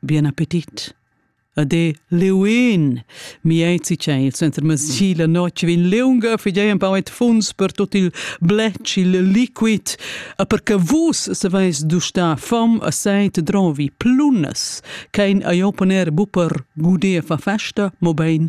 Bien appetit. Ade leun! Mi ei cicel senza masci la notg vegn leunga figei empau et funs per tot il bletsch, il liquid, a per che vus saveis dustar fom a seit drovi plunas, kein a jo poner buper guder fa festa, mo bein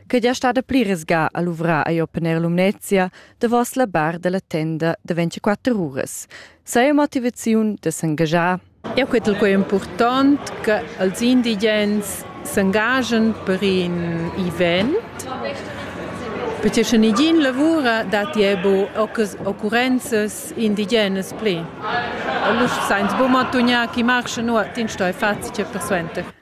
che gia stada pli resga a luvrar a opponer Lumnezia davos la bar della tenda de 24 uras. Saja motivaziun de s'engagiar. Eu quetel quei important che els indigens s'engagen per in event perché sche nigin lavura datti ebo occurrenzas indigenas pli. Allura sainz bu mantugnar chi marcha nuot in stoi fazi per suenter.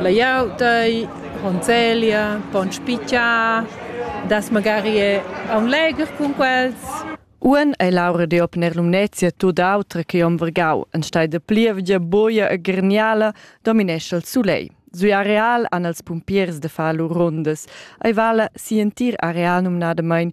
Laiau dei conzeglia, pon spitgiar, das magari è aun legher cun quels. Uan ei Laura de op ner Lumnezia tut autra che om Vergau, en stai de plievgia boia e gerniala dominescha il sulei. Sui areal han els pumpiers de far lur rundas. Ei vala si entir areal numnadamain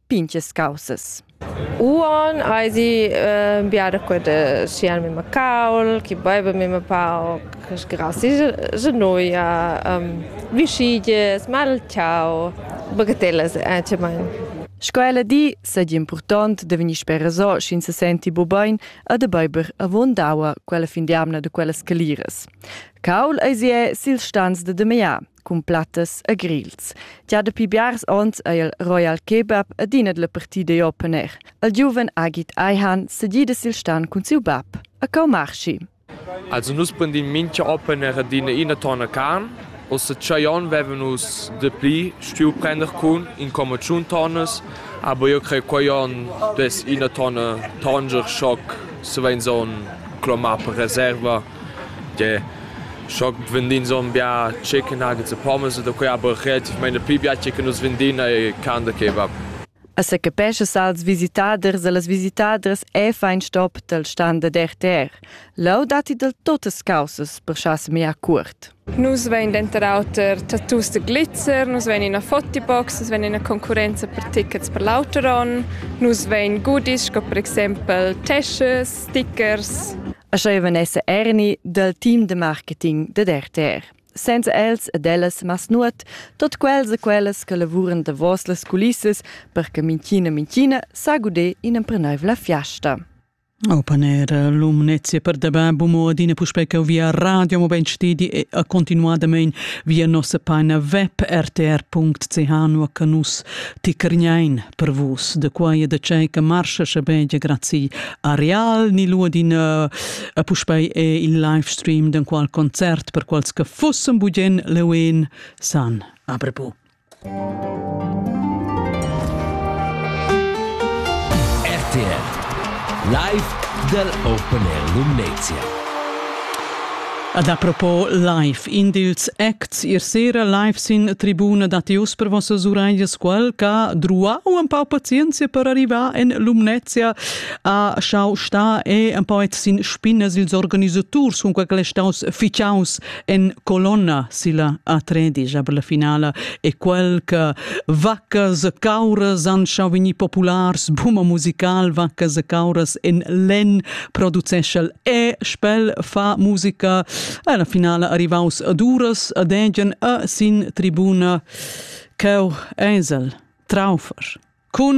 pinches causas. Uon aisi äh, biada qua de sian mima caul, chi baiva mima pauc, grassi genoia, um, vischiges, malciau, bagatellas anciamain. Sco ella di, seigi impurtont da vegnir spereso, sch'ins se senti bu bein a de beiber avon daua quella fin di amna de quellas caliras. Caul eisi è sil stanz de de mea. cun plattas e grils. Gia dapi biars onns è il Royal Kebab adina la partida da Open Air. Il giuven Agit Aihan sedida sil stan cun siu bab, a Kaumarschi. Also nus prendim mincha Open Air adina ina tonna carn. Ossa tschei onn veven nus de pli stuiu prender cun in comma tschun tonnas, aber io crei quei onn des ina tonna Tanger Schock se vein so clomar per reserva Tgè, schoc vendin zon bia chicken nuggets e pommes da quei aber relativmain pli bia che nus vendin e can da kebab. A secapescha als visitaders e las visitadras è fein stop dal stand da RTR. Leu datti del totas causas per schar semia cuort. Nus vein denter auter tattoos da glitzer, nus vein ina fotibox, nus vein ina concurrenza per tickets per l'auter onn, nus vein goodies sco per exempel teschas, stickers. E sch'ei vegnesse erni dal team de marketing dad RTR. Senza els ed ellas mas nuot, tot quels e quellas che lavuran davos las culissas per che minchina minchina sa guder in empreneuivla fiasta. Opaner Lumnezia per da bab mo adina puspei che via radio mo ben stedi e a continuadamein via nossa paina web rtr.ch nu che nus ti crgnein per vus de quai e de cei che marscha schabegia grazie a real ni lu adina a puspei e il live stream den qual concert per quals che fussem bugien leuin san aprepu RTL Live dal Open Air Lumnezia. Ad apropos live, in dils acts ier sera live sin tribuna datti uss per vossas uraglias quel che druau un pau pazienza per arrivar en Lumnezia a schau sta e un pau sin spinnas ils organisaturs cun quel staus ficaus en colonna silla A3 per la finala e quel che vaccas e cauras han schau vegnir populars, buma musical vaccas e cauras en len produceschel e spel fa musica e la finala arrivaus ad uras ad egien a sin tribuna Ceu Eisel Traufer cun